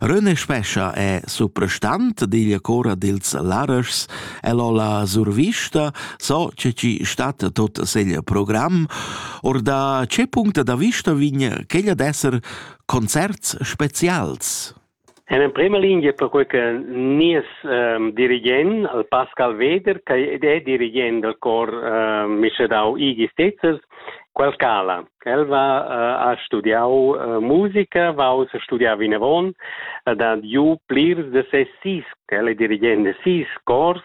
Rönne Spescha è suprastant digl cora dils Larers, el ho la survista, so che ci stat tot segl program, or da che punct da vista vign quegl ad esser concerts specials? En emprema linea per quel che nies um, dirigent, il Pascal Weder, che è dirigent del cor um, Michedau Igis Tetzers, quel cala. Quel va uh, ha studiau uh, musica, va uss a studiar vinavon ed ha giu plirs de ses sis, quel è dirigent de sis cors,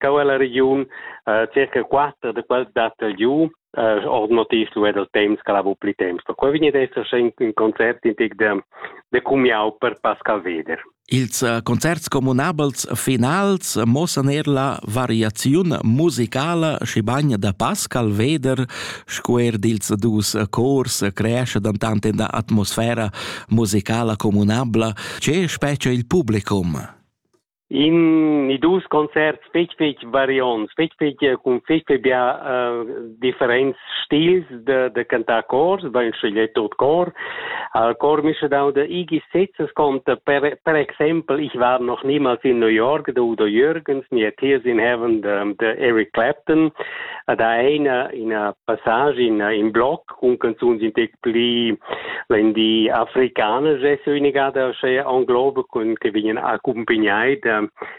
cau ella regiun uh, circa quatter de quels dat el giu uh, ord motiv lu era il temps che la bu pli temps. Per quei vegni ad esser in, in concert in tic de, de cumiau per Pascal Weder. Ils concerts communabels finals muossan er la variaziun musicala, schibagn da Pascal Weder sco er dils dus cors creesce dentant in da atmosfera musicala communabla. Che spetga il publicum? In i dus concerts fetg fetg variants fetg fetg cun fetg fetg bia differents stils de, de cantar cors, bein scegliet tot cor. Al cor mi dau de i Gesetzes kommt per, per exempel ich war noch niemals in New York der Udo Jürgens mir Tears in Heaven de, de Eric Clapton da eine in a passage in in Block un canzuns in tec pli wenn die afrikanische Söhnigade che anglobe kun che vingen accompagnai de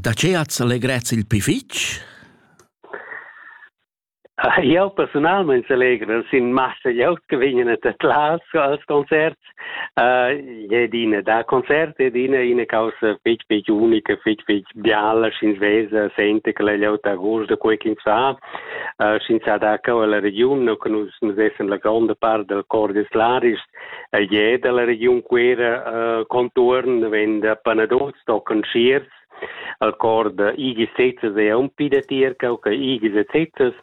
Da che ats allegrets il pli fitg? Jau persunalmein selegro sin massa glieud che vegnan a tedlar als concerts. Uh, ed ina da concert ed ina ina causa fetg fetg unica, fetg fetg biala sch'ins vesa sente che la glieud d'agost da quei ch'ins fa, uh, sch'ins sa da cau alla regiun, no che nus nus vessen la gronda part del cor des laris, El je dalla regiun Cuera uh, contuorn venda panadol stocken schiers al cor da igis sezzas e un pi da tier cau che igis e sezzas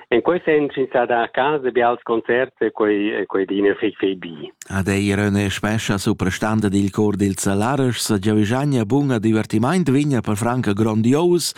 en quei sen sin sa da casa bi als concerts e quei e quei dina fei fei bi ad eir üna spescha suprastanda dil cor dil Zalares sa giavigagna bun a divertimaint vigna per franca grandios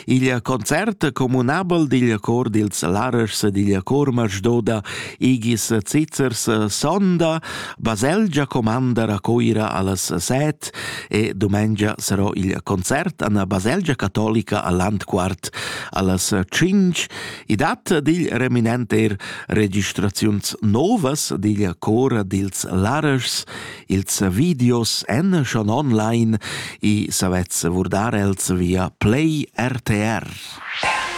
il concert comunabel dil cor dil Zalares ed il cor Masdoda Igis Zizzers sonda, baselgia comanda a Coira allas set e domengia sarò il concert an la baselgia cattolica al Landquart allas cinc. I dat digl reminent er registraziuns novas digl cor dils Lareschs, ils videos en schon online i savez vurdar els via Play RTR. RTR.